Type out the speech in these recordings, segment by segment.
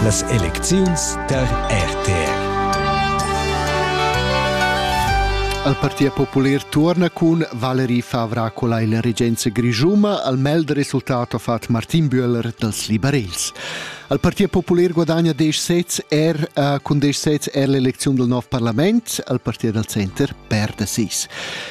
Las elecziuns tar RTR. Al Partia Popular torna cun Valerie Favracola in regenza grischuma al meld resultato fat Martin Böhler dals liberals. Al Partia Popular guadagna 10 sets er uh, cun 10 sets er l'elecziun del nov parlament, al Partia dal Center perde 6.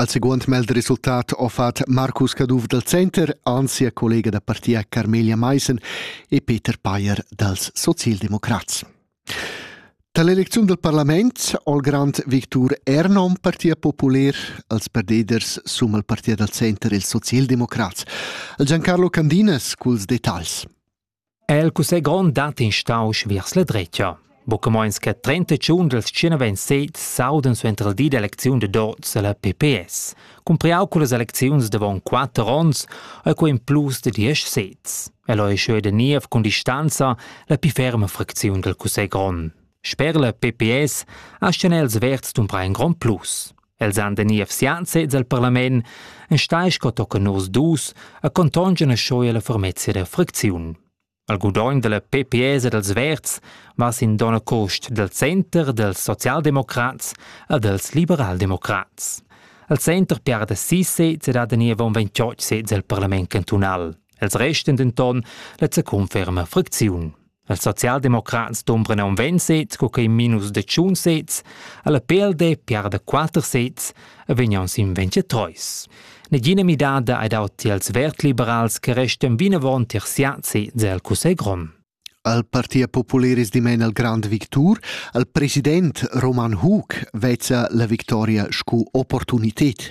Al seguond meld resultat ha fatg Marcus Caduff dal Center, anzi sia collega da partia Carmelia Maissen e Peter Payer dals Socialdemocrats. Da l'elecziun dal parlament al grand Victor Ernon, Partia Populer, als perdeders sum al partia dal Center ils socialdemocrats, al Giancarlo Candinas culs detagls. El cussegl grond dat instausch viers la dretga. Buca meins che 30 tschun dals 127 s'audan suenter il di d'elecziun de Dots alla PPS, cumpriau cullas elecziuns davon 4 ons e co in plus de 10 sez. El ei scheu de niev cun distanza la più ferma fracziun del cussegl grond. Sper la PPS asten els verds dumbra in grond plus. Els han de niev sian sez al parlament, enstai sco tochen nus dus, a contongen a schoi alla fermezia der fricziun. Al gudogn della PPS e dels Verds va sin dona cost del Center dels Sozialdemokrats a dels Liberaldemokrats. Al Center piarda si sez ed ha de niev un 28 sez al parlament cantunal. Els resten denton, let se conferma fricziun. Els socialdemocrats dombran aunc ventg sez, co quei minus de tschun sez, alla PLD piarda quater sez e vegnan sin ventgetreus. Negina midada ei dau tiels vertliberals che restan vinavon tier siat sez el Cussegl grond. Al Partia Populeris dimen al Grand Victor, al president Roman Hug vezza la victoria sco opportunitet.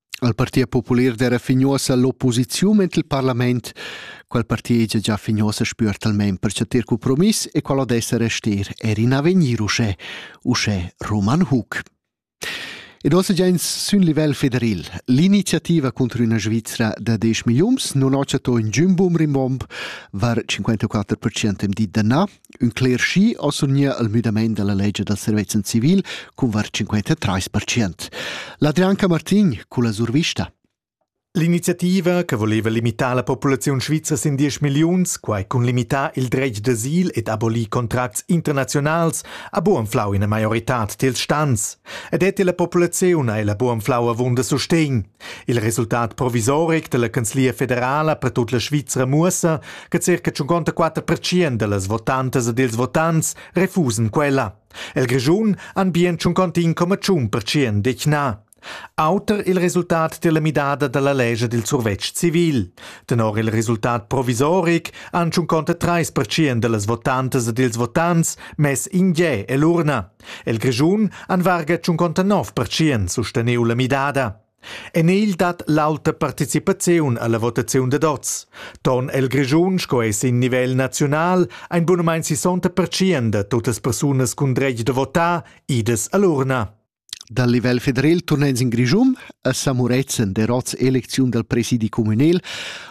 al Parti popular d'era fignuossa l'opposiziun ent il parlament, quel parti egia già fignuossa spür talmain per chatter compromiss e qual odessa restir er in avegnir uschè, uschè Roman Hug. Ed ossa gens sün livel federal, l'iniziativa contro una Svizzera da 10 milions non ho chato in giumbum rimbomb var 54% di da na, Ün cler schi ho surgnieu al müdamaint da la legia da servezzan civil cun var 53%. L'Adrianca Martin culla survista. L'iniziativa che voleva limitare la popolazione svizzera in 10 millioni, quai cun limitar il dretg d'asil ed abolir contracts internazionals, ha buanflau ina maiorità dils stans. Ed è la popolazione e la buanflau avunda sustegn. Il resultat provisoric dalla canzlia federala per tut la Svizra muossa che circa 54% dallas votantas ed ils votants refusan quella. El Grischun han bien 51,1% detg na. Auter il resultat della midada dalla legge del survetsch civil. Tenor il resultat provisoric han 53% dallas votantas ed ils votants mess in gè e l'urna. El Grischun han varga tschunconta nov pertschient susteniu la midada. En egl dat l'auta participaziun alla votaziun dad oz. Ton el Grischun sco ei sin nivel naziunal ein bunamein 60 pertschient da tuttas persunas cun dretg da votar idas all'urna. Dal livel federal turnein in Grischun a Samuretzen der Rots Eleziun dal presidi communal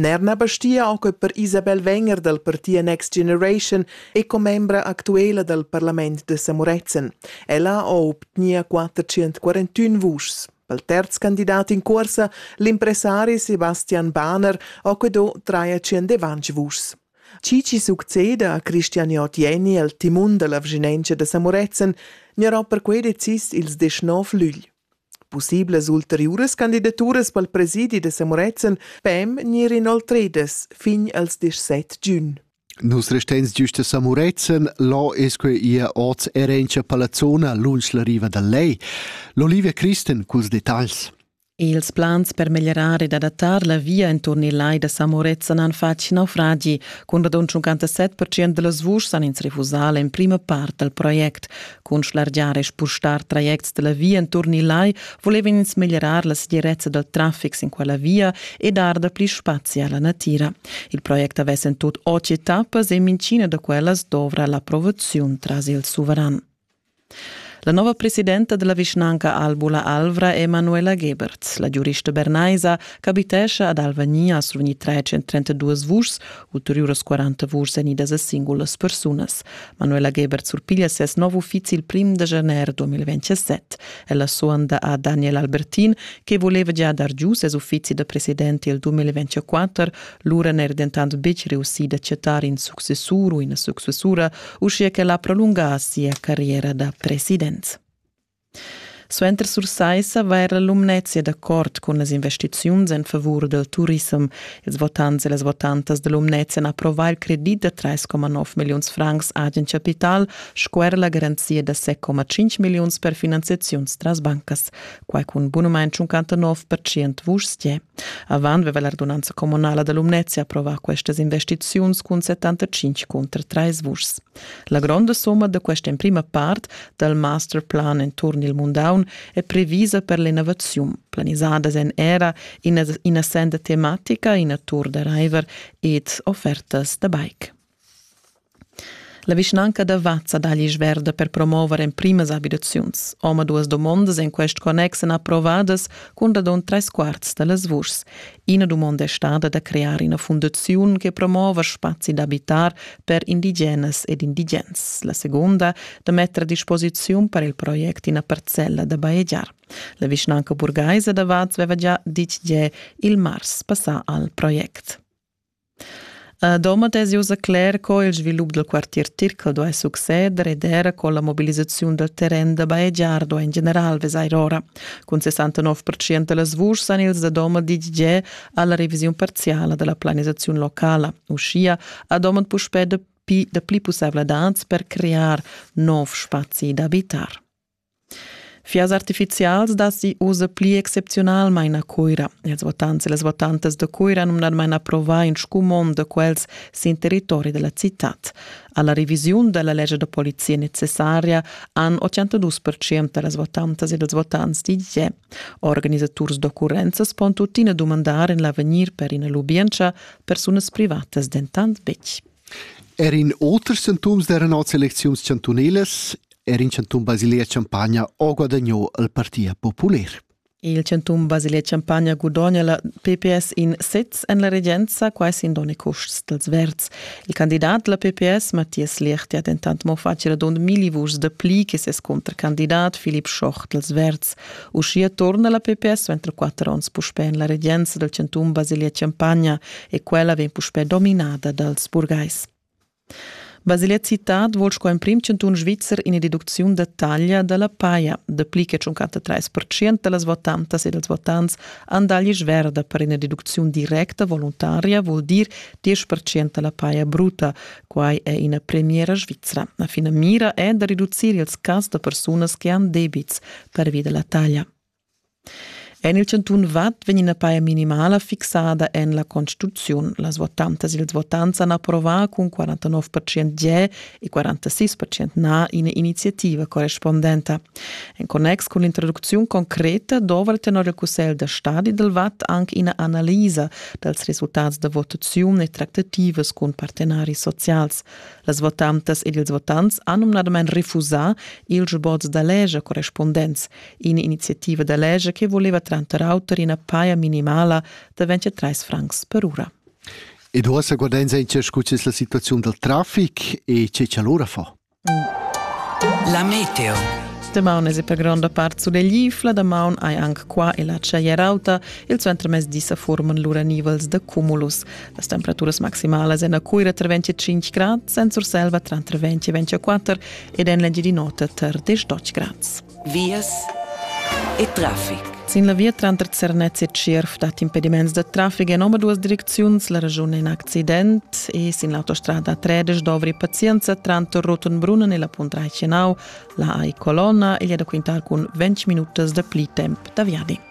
Nair na bastia anche per Isabel Wenger dal parti Next Generation è commembra actuela dal parlament de Samorezen. Ella ha obtnia 441 vuschs. Pel terz candidat in corsa, l'impressari Sebastian Bahner ha quedò 320 vuschs. Chi ci succeda a Christian Jotieni al timun dalla vginenza da Samorezen, gnarà perquei decis ils 19 lügl. Pussiblas ulteriuras candidaturas pel presidi da Samurezzan pem gnir inoltridas fin als disset giun. Nus restains giust a Samurezzan, là es que ia oz erencha Palazzona lunsch la riva dal Lej. L'Olivia Christen culs detagls. Ils plans per meglierar ed adattar la via inturn il lai da Samurezzan han fatg naufragi. Cun radund 57% da las vuschs han ins refusà l'emprima part dal project. Cun schlargiar e spustar trajects dalla via enturn il lai volevan ins meglierar la segirezza dal traffic sin quella via e dar dapli spazi alla natira. Il project avess en tut otg etappas e mincina da quellas dovra l'approvaziun tras il suveran. La nova presidenta della vischnanca Albula Alvra è Manuela Gebert. La giurista bernaisa ch'abitesce ad Alvania sur ogni 332 vuschs Ulteriuras 40 vurs vegnidas a singulas persunas. Manuela Gebert surpiglia ses nov uffizi il prim da janer 2027. Ella suonda a Daniel Albertin, che voleva già dar giu ses uffizi da presidente il 2024, lura n'era dentant betg reussì d'acceptar in successur u ina successura, uschia che l'ha prolungà sia carriera da president. Suenter Sursaissa va era Lumnezia d'accord cun las investiziuns en favur dal turissem. Ils votants e las votantas da Lumnezia han approvà il credit da 3,9 milliuns francs agen capital sco er la garanzia da 6,5 milliuns per finanziaziuns tras bancas. Quai cun bunumain 59% vuschs tie. Avant aveva l'ordonanza communala da Lumnezia approvà questas investiziuns cun 75 cunter 3 vuschs. La gronda somma da questa emprima part dal master plan enturn il mundaun è previsa per l'innovaziun, planisadas en era ina, ina senda tematica, ina tour da river ed offertas da bike. La vischnanca da Vazza dà gli sverda per promover emprimas abitaziuns. Oma duas domondas en quest connex èn approvadas cun radon tres quarts da las vuschs. Ina dumonda è stada da crear ina fundaziun che promova spazi d'abitar per indigenas ed indigens, la seconda da metter a disposiziun per il project ina parcella da bajegiar. La vischnanca burgaisa da Vaz aveva già ditg tge il mars passà al project. Domat es ussa cler co il svilup dal quartier Tircal duai succeder ed era co la mobilisaziun dal terren da bajegiar duai in general vesair ora. Cun 69% da las vuschs han ils da Domat ditg già a la revisiun parziala da la planisaziun locala. Uschia ha Domat puspè dapi dapli pussaivladad per crear nov spazi d'abitar. Fias artificials datti ussa pli excepziunalmain a Cuira. Ils votants e las votantas da Cuira numnadamain approvà in scumond da quels sin territori da la citad. A la revisiun da la lescha da polizia necessaria han 82% da las votantas e dals votants ditg che organisaturs d'occurrenzas pon tuttina dumandar en l'avegnir per ina lubientscha persunas privatas dentant betg. Er in auter sintoms d'eran oz elecziuns chantunalas. Er in chantun Basilea Champagna ha guadagnò il Parti popular. Il chantun Basilea Champagna gudogna la PPS in sez en la regenza, quai sin donne custs dels verds. Il candidat la PPS, Mathias Lecht, ha dentant mo fatg radund milli vuschs da pli che ses contracandidat Philipp Schoch dels verds. Uschia torna la PPS suenter quatter onns puspè en la regenza dal chantun Basilia-Champagna e quella vegn puspè dominada dals burgais. Basilia Citad vul sco emprim chantun svizzer ina deducziun da taglia da la paja. Dapli che 53% da las votantas e dals votants han taglia sverda per ina deducziun directa voluntaria, vul dir 10% da la paja bruta. Quai è ina premiera svizra. La finamira è da reducir ils cas da persunas che han debits, pervi da la taglia. En il chantun Vad vegn ina paia minimala fixada en la Constituziun. Las votantas e ils votants han approvà cun 49% ge e 46% na ina iniziativa correspondenta. En connex cun l'introducziun concreta dovrà tenor il Cussegl da stadi dal Vad anche ina analisa dals resultats da votaziun e tractativas cun partenaris socials. Las votantas ed ils votants han numnadamain refusà ils sboz da leger correspundents. In'iniziativa da leger che voleva tranter auter ina paja minimala da 23 francs per ura. E ora sa guardain senza scusis la situazione del traffic e che c'è l'ora fa. Mm. La meteo. Damaun es per gronda part suleglifla, damaun hai anche qua e la tschaiarauta, il centro mezdi sa forman lura nivels da cumulus. Las temperaturas maximalas en la Cuira tra 25 grad, en Surselva tranter 20 e 24 ed en l'Engiadin'Ota tar 18 grads. Vias e traffic. Sin la via tranter Zernez e Tschierf dat impediments da traffic en omaduas direcziuns. La regiun è in accident e sin l'autostrada 13 dovri pazienza tranter Rotenbrunnen e la Punt Reichenau, la AI Colonna e da quintar cun 20 minutas da pli temp da viadi.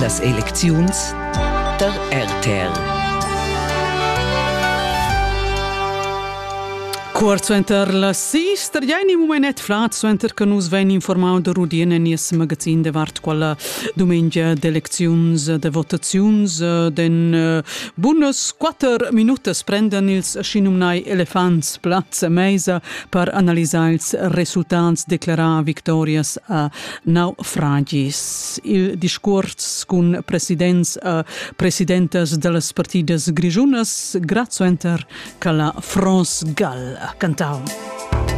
Las elecziuns da RTL Cuort suenter la sister jaini mumenet flat suenter che nus vein informau da Rudien en nies magazin davart quella dumengia d'elecziuns de votaziuns den eh, bunas quatter minutas prendan ils schinumnai elefants plaz a meisa per analisar ils resultats declarà victorias a naufragis. Il discurs cun presidents e presidentas da las partidas grischunas grazzuenter che la France Gall ha cantau.